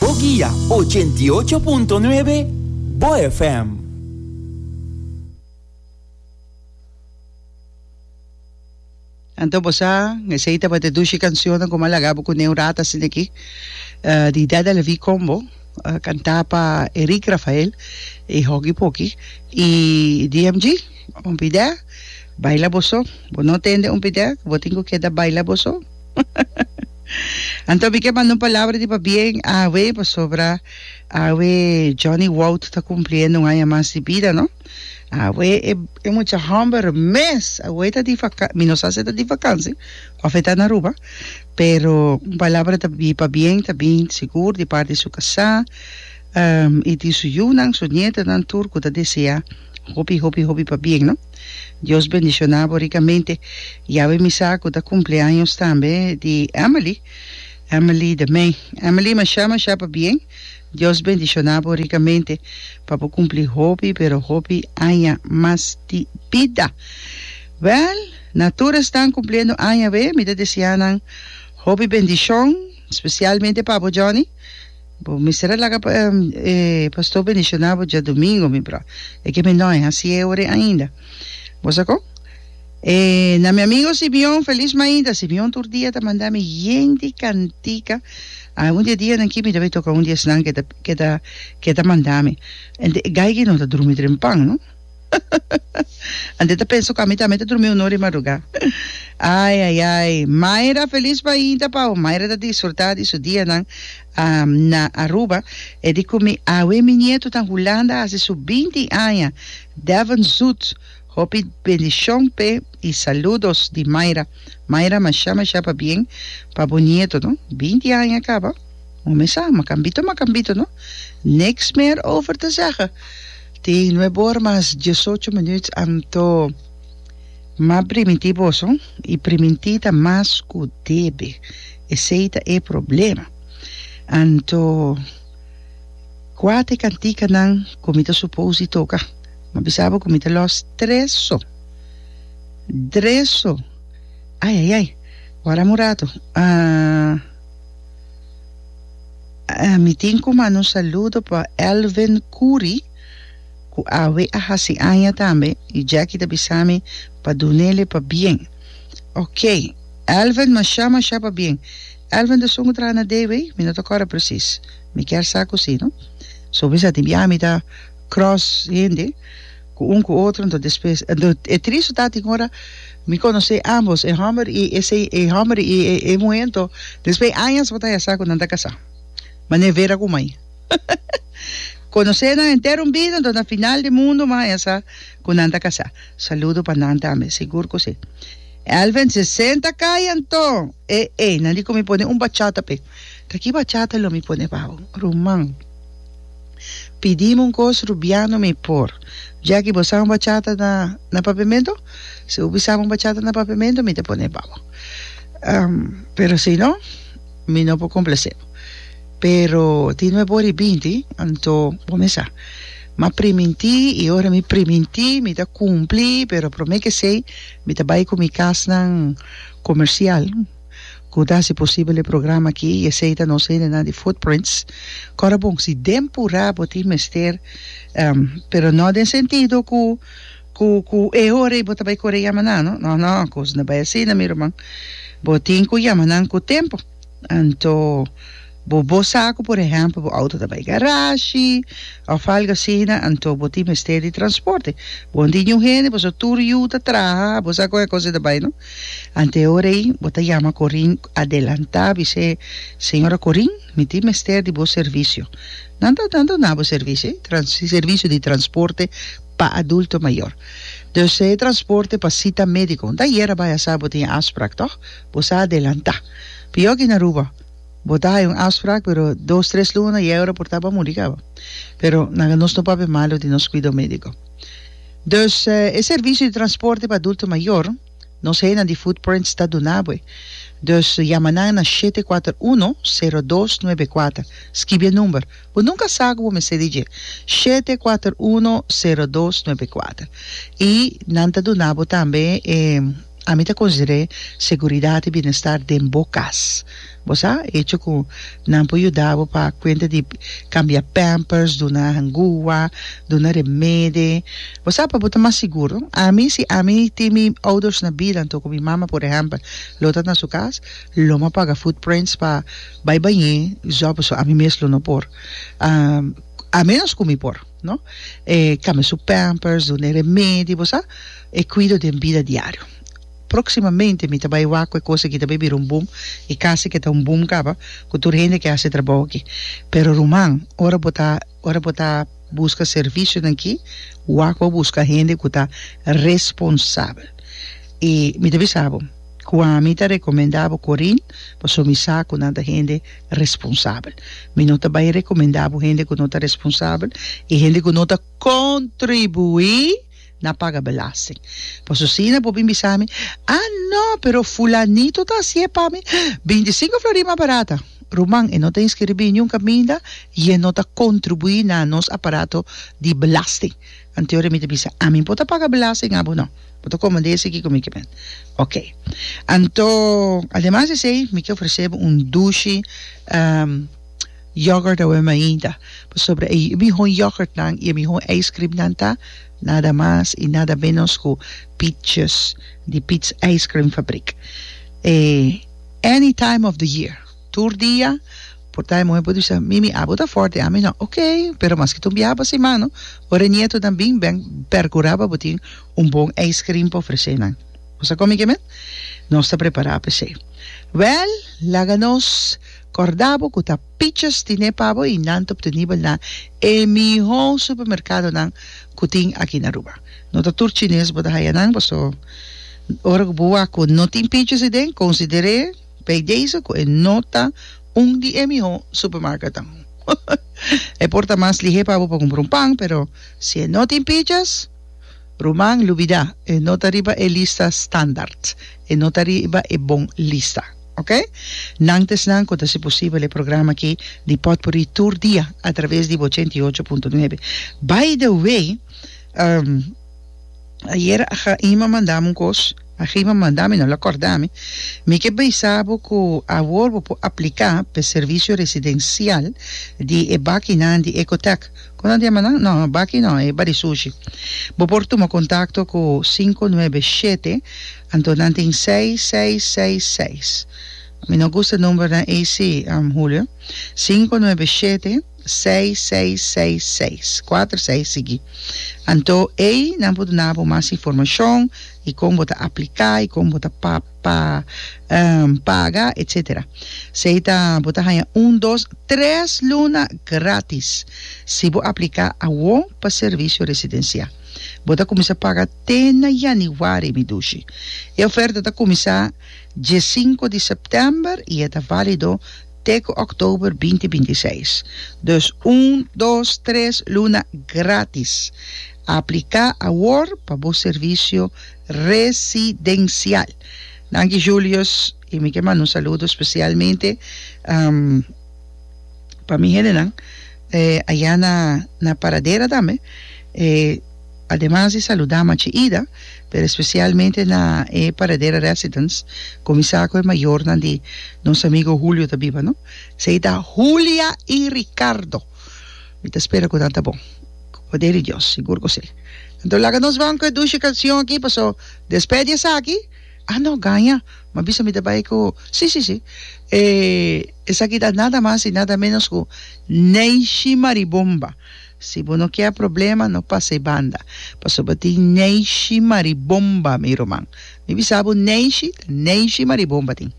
Bo guia ochenta i ocho punto nuebe Bo FM. Anto bo sa, esei tabata dushi cancionnan cu m'a laga bo cu nen un rato asina aki. Uh, di Dada Levi Combo, uh, cantá pa Erick Rafael y hoki poki. Y DMG, un pidea, baila boso. Bo no tende un pidea cu bo tin cu keda baila boso. Anto mi ke manda un palabra di pabien awe pasobra awe Johnny Wout ta cumpliendo un aña mas di bida no awe e, e mucha homber mes awe ta di vaca mi no sa si e ta di vakansi of e ta na Aruba pero un palabra ta di pabien ta bin sigur di parti su casa um, y di su yunan su nietanan tur cu ta desea Hopi hopi hopi pa bien no. Dios bendiciona bo ricamente y a bemisa cu ta cumpleaños tambe di Emily Emily de May Emily masha masha pa bien Dios bendiciona bo ricamente pa bo cumpli hopi pero hopi aña mas di bida Well na tur estan cumpliendo aña be mi ta deseanan hopi bendicion specialmente pa bo Johnny Bo mester a laga e pastor bendiciona bo djadomingo mi bro e ke mi no a haci e ore ainda bo sa con e na mi amigo Simeon feliz mainta Simeon tur dia ta manda mi yen di cantica a un di e dia nan ki mi ta bay toca un di esnan ke ta ke ta ke ta manda mi ente gaigen no ta drumi dren pan no Ante ta pensa cu ami tambe ta drumi un ora di madruga. Ai, ai, ai. Mayra feliz pa hinta pau. Mayra ta disfruta di su dianan na Aruba. E di cu mi, Awe mi nieto ta Hulanda a haci su binti aña. Devon Zoet. Hopi bendicion p'e y saludos di Mayra. Mayra masha, masha pabien pa bo nieto, no. Binti aña caba. Momen sa, macambito, macambito, no. Niks meer over te zeggen. Tin nuebe ora mas diesocho minuut anto ma primintí boso i primintí ta mas ku debe. Esei ta e problema. Anto kua ta e kantikanan ku mi ta supos di toka? M'a bisa bo ku mi ta lòs tres so. Dres so. Ai ai ai. Wardá un ratu. Ahh. Mi tin ku manda un saludo pa Elvin Kuri ku awe a hasi aña tambe i Jackie ta bisa mi pa dunele pabien ok Elvin masha masha pabien Elvin ta sun ku traha na DW mi no ta kòrda presis mi kier sa ku si no so mi sa tin bia mi ta cross hende Cu un cu otro anto despues e tris su tati ora mi conoce ambos e homber y ese e homber y e muhe anto despues añas bo ta ya sa cu nan ta casa mane vera cu mai conoce nan entero un bida anto na final di mundo bo a ya sa cu nan ta casa saludo pa nan tambe sigur cu si Elven sesenta cay anto e e nan di cu mi pone un bachata pe ta ki bachata lo mi pone bou ruman. Pidim un cos Rubiano mi por. Jackie bo sa un bachata na na papiamento? Si bo bisa un bachata na papiamento mi ta pone pa bo. Um pero si no mi no por complace bo. Pero tin me body binti anto bo me sa ma priminti y ora mi priminti mi ta cumpli pero prome ke sey mi ta bay cu mi casnan comercial. ku ta hasi posibel e programa aki i esei ta nos hendenan di Footprints. Kòrda bon, si den Purá bo tin mester, pero no den sentido ku ku ku e hora ei bo ta bai kore yama nan, no, no, no, kos no bai asina mi ruman. Bo tin ku yama nan ku tempu, anto. Bo bo sa ku por ehèmpel bo outo ta bai garashi òf algu asina anto bo tin mester di transporte. Bon tin yu hende pasobra tur yu ta traha, bo sa kon e kos ei ta bai no. Ante ora ei bo ta yama Corin adelantá bis'é, Señora Corin, mi tin mester di bo servisio. Nan ta nan ta na bo servisio ei? Trans servisio di transporte pa adulto mayor. Dus e transporte pa sita médiko. Nta ayera bai a sa bo tin e afsprak tòg? Bo sa adelantá. Pio aki na Aruba. Bo ta hay un afsprak pero dos tres luna yehora por taba muri caba pero naga nos no papia malo di nos cuido medico dus e servicio di transporte pa adulto mayor nos heynan di footprints ta duna boe dus yama nan na shete kuater uno sero dos nuebe kuater skibi e number bo nunca sa cu bo mester di dje shete kuater uno sero dos nuebe kuater y nan ta duna bo tambe e Ami ta consider'é seguridat i bienestar den bo cas. Bo sa, e hecho cu nan por yuda bo pa cuenta di cambia pampers, duna hangua, duna remede. Bo sa, pa bo ta mas siguro, ami, si ami tin mi ouders na bida anto cu mi mama, por ehempel, lo ta na su cas, lo m'pa paga footprints pa bay bañ'é, zòp, pasobra ami mes lo no por. A menos cu mi por. No. E cambia su pampers, duna e remedi, bo sa, e cuido den bida diario. Proximamente mi ta bay wak cu e cos aki ta bay bira un boom y casi que ta un boom caba cu tur hende ke haci e trabao aki. Pero ruman, ora bo ta, ora bo ta busca servicionan aki, wak bo busca hende cu ta responsabel. Y mi ta bisa bo cu ami ta recomenda bo Corine, pasobra mi sa cu nan ta hende. responsabel. Mi no ta bai rekomendá bo hende ku no ta responsabel i hende ku no ta kontribuí na paga belasting. Pasobra asina bo bin bisa mi, A no, pero fulanito ta hasi e pa mi bintisinko florí mas barata. Ruman, e no ta inskribí niun kaminda i e no ta kontribuí na nos aparato di belasting. Anteori mi ta bisa, ami por ta paga belasting abo no, bo ta comand'e esei kiko mi ke men. Ok. Anto, ademas di esei mi ke ofrecebo un dushi yoghurt awe mainta, pasobra e miho yoghurtnan y e miho ijskrimnan ta nada mas y nada menos ku Pietjes di Piet's Ijskrimfabrik. E any time of the year. Tur dia, por ta e muhe por bisa, Mimi, abo ta fort di ami no. Ok, pero maske tin un biaha pa simano, ora e nietonan bin, ben percura pa bo tin un bon ijscream pa ofrece nan. Bo sa come kimen? Nos ta prepara pa esey. Wel, laga nos corda bo cu ta pichas dine pa bo y nan ta obtenibel na e miho supermercadonan cu tin aki na Aruba. No ta tur chines bo ta haya nan, pasobra ora cu bo wak cu no tin pichas iden, considere. P'edeso cu e no ta un di e miho supermarketnan. E por ta mas lihe pa bo pa cumpra un pan, pero si e no tin pichas, ruman, lubida, e no ta riba e lista standaard, e no ta riba e bon lista. Ok? Nan ta esnan cu ta haci posibel e programa aki di Potpourri tur dia atraves di ochenta y ocho punto nuebe. By the way, um. Ayer a Chaima mandami un kos, a Chaima mandami no, el a kòrdami, mi ke bisa bo ku awor bo por apliká pa e servisio residensial di e bakinan di Ecotech. Kon a dema nan? Nò, baki nò, e Barisushi. Bo por tuma kontakto ku sinku nuebe shete, anto nan tin seis, seis, seis, seis. Mi no gusta numbernan ei sí, Julio. Sinku nuebe shete. seis, seis, seis, seis. Kuater seis sigui. Anto ey nan por duna bo mas informashon y kon bo ta aplica y kon bo ta pa pa paga etcetera. Sey ta bo ta haya un, dos, tres luna gratis si bo aplica awo pa servicio residencia. Bo ta cuminsa paga te na Januari mi dushi. E oferta ta cuminsa diesinco di september y e ta valido te ku òktober binti binti seis. Dus un, dos, tres luna grátis. Apliká awor pa bo servisio residensial. Danki Julius i mi ke manda un saludo spesialmente pa mi hendenan ayá na Paradera tambe. Ademas di saludá Machi Ida, pero espesialmente na e Paradera Residence, kuminsá ku e mayornan di nos amigu Hulio ta biba, no? Esei ta Hulia i Ricardo. Mi ta spera ku nan ta bon, ku poder di Dios, sigur ku si. Anto laga nos bon ku e dushi kanshon aki, paso despè di esaki, Ah, no, Ganja, m'a bisa mi ta bai ku, si, si, si, e, esaki ta nada mas i nada ménos ku Neishi Maribomba. Si bo no kier problema no pasa e banda pasobra tin neishi maribomba mi ruman mi bisa bo neishi ta neishi maribomba tin.